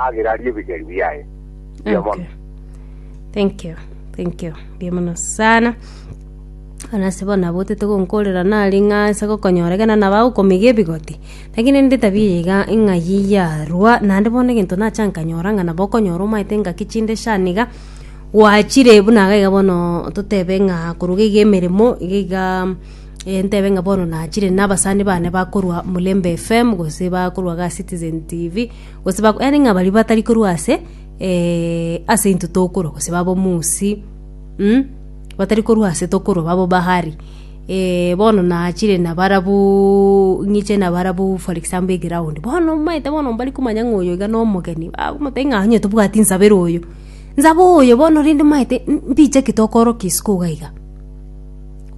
agere arie ebigeri biaye. Mbuya mono. Okay. Thank you. Thank you. Mbuya mono sana. Ana se bona botete gonkorera nari ng'a ase gokonyora ekero nabagokomiga ebigoti. Lakini ndi tabia eye iga ng'a yiyarwa naende bono egento nacha nkanyora ng'a nabo okonyora omanyete engaki chinde shaniga gwachire buna iga iga bono totebe ng'a koruga iga emeremo iga iga eh, ntebe ng'a bono nachire nabasani bane bakorwa Mulembe FM gose bakorwa ga Citizen TV Gose ba, yaani ng'a baria batari korwa ase ase intwe tokorwa, gose b'abomusi, um, batari korwa ase tokorwa babo bahari. bono nachire nabarabuuuu ng'iche nabarabu for example eground, bono omanyete bono mbari komanya ng'a oyo iga na omogeni, bagomotebi ng'a onye tobwati nsabera oyo, nsabe oyo bono rende omanyete mbiche ki tokorokia isiko iga iga.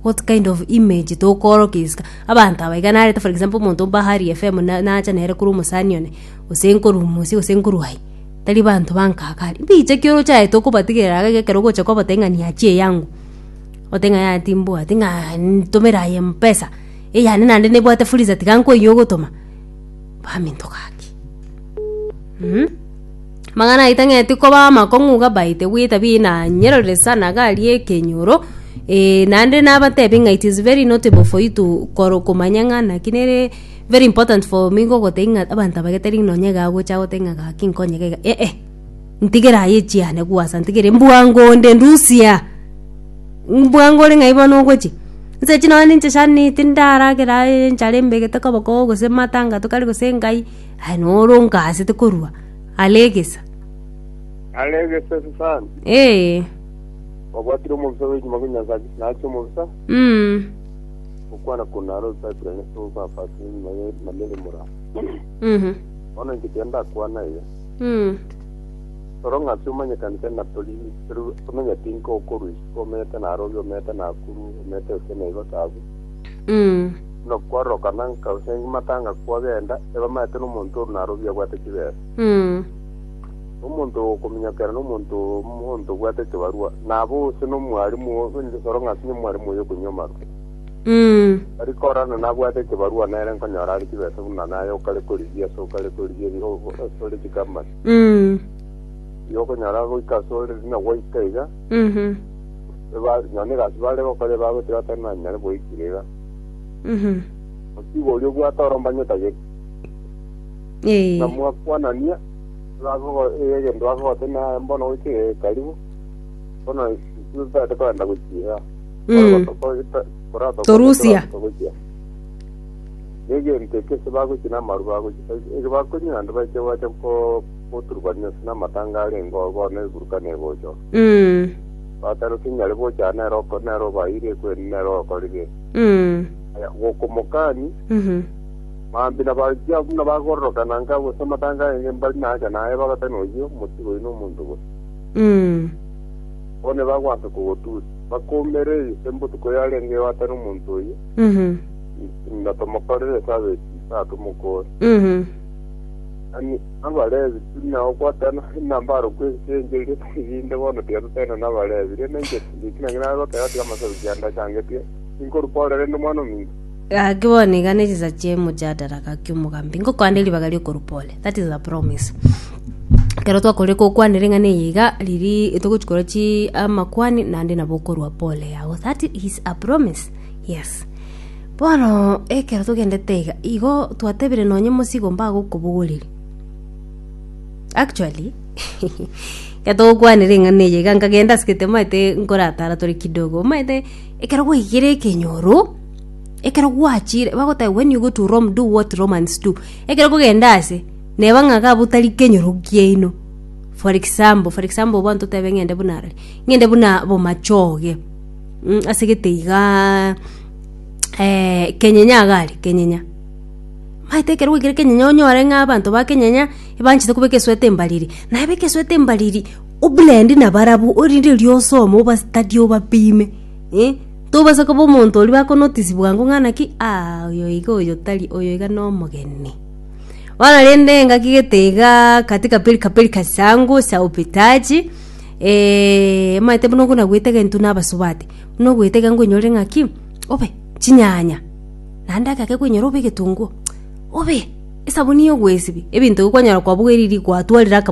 what kind of image tokoorokia isiko abanto aba iga narete for example omonto o bahari fm na- nacha nere korwa omosani one gose nkorwa omosie gose nkorwa aye tari banto bankaka aria mbiche ki ochaete okobatigerera iga ekero ogocha kobatebia ng'a niachia eyangu ote ng'a yaya timbwati ng'a ntomere aye mpesa eyane naende nebwate fuliza tiga nkoyia ogotoma baminto gaki Mm. Mang'ana aito ng'eti koba amakong'u gabaite gwita bina nyerorire sana gari ekenyoro eh, naende nabatebi ng'a it is very notable for you to koro komanya ng'a naki nere very important for me gogotebia ng'a abanto abagete ring'ina onye iga agocha agote ng'a gaki nkonyegega eh eh. ntigera aye chiane gwasa ntigere mbwango onde ndusia mbwango ore ng'ai bono ogochi nse chi nonya ninche shani tindaragera aye enchara embegete koboko gose matanga tokari gose ngai aye noro ongasete korwa are egesa Are egesa sana. ee Obwatire omobisa bw'enyuma bwa Nyasaye nache omobisa mm. okwana kunara osakire ne papa enyuma ye na mere mura. mhm. Bono inche kenda kwana iga. Rora ng'a ase omanyekanete na tori eru, omenya tinko okorwa isiko omete narobi, omete nakuru, omete gose naigo taabu. Buna kwarorokana nka gose matanga kwagenda, ebamanyete nomonto oru narobi abwate chibesa. Omonto okominyokera nomonto omonto obwate ekebarua, nabo ose nomwarimu, rora ng'a ase omwarimu oyo okonywa amarwa. Tari korana nabwate ekebarua nere nkonyora are chibesa buna naye okare korigia ase okare korigia ebi o- ase ore chikamani. Ebi okonyora goika ase ore rina gwaika iga, eba- nonye egasi bare gokora ebagwete batari nanyare boikire iga. Otiga oria obwate orombanyo otagete. Buna mwakwanania, bagogo- eh, egento bakogotebia naye mbono goika iga ekaribu, bono intwe totagete kogenda gochia igaa. Mm. Torusia. negerito ekio ase bagochi namaru bagochi ege bakonywa naende baiche gwacha ko- goturubania ase namatanga arenge oo bono eburuka negocha oo Mm. batare kinyare gocha nero oko nero obaeire ekweni nero okorire Mm. aya gokomokani Mhm. maambia nabarusia buna bagororokana nka gose amatanga arenge mbari nacha naye bagatana oyio motigo oino omonto gose Mm. bono bagwansa kogotusi Bakoimereire ase botuko yarenge goatana omonto oyio, na tomokorere esaaba echisaa tomokoore. Mani Abalevi buna ogoatana enamba aro kwesichencherire erinde bono tiga toteena n'Abalevi. Rende inche Timoteo, naki nare goteba tiga amasabuki ande achangetie, tinkoruka ore rende omwana ominto. Gaki bono iga nechinsa chi'emojadara gaki omogambi, ngokoa nde ribaga ri'okoruka ore. that is a promise ekero twakore kokwana ring'ana eye iga riri togochi korwa chi amakwani naende nabo okorwa pole yago that is a promise yes bono ekero togendete iga igo twatebire nonye mosigo mbagokobogoreria actually getogokwanera eng'ana eye iga nkagenda ase egete maete nkoratara tore kidogo omaete ekero gwaigire ekenyoro ekero gwachire bagoteba when you go to rome do what romans do Ekero kogenda aase, neba ng'a ga botari kenyoro kiaino. For example, for example bono totebe ng'ende buna rari, ng'ende buna bomachoge, mm ase gete igaa kenyenya iga are, kenyenya. Maete ekero gwaikire kenyenya onyore ng'a abanto ba kenyenya ebanchete kobeka esweater embariri, naye beka esweater embariri, o blend nabarabwo, orinde rionsi omo oba study obapime, eh. Tobasa koba omonto oria bako notice bwango ng'a naki aa oyo iga oyo tari oyo iga no omogeni. Bono rende engaki gete igaa katika pilka pilka zangu za upitaji omanyete buna okona goetega intwe na abasubati buna ogoetega ngonyore ng'aki obe chinyanya naende agake konyora obe egetunguo obe esabuni ya ogoesibia ebinto ebi kwanyora kwabugereiri gwatwarire akamotwe.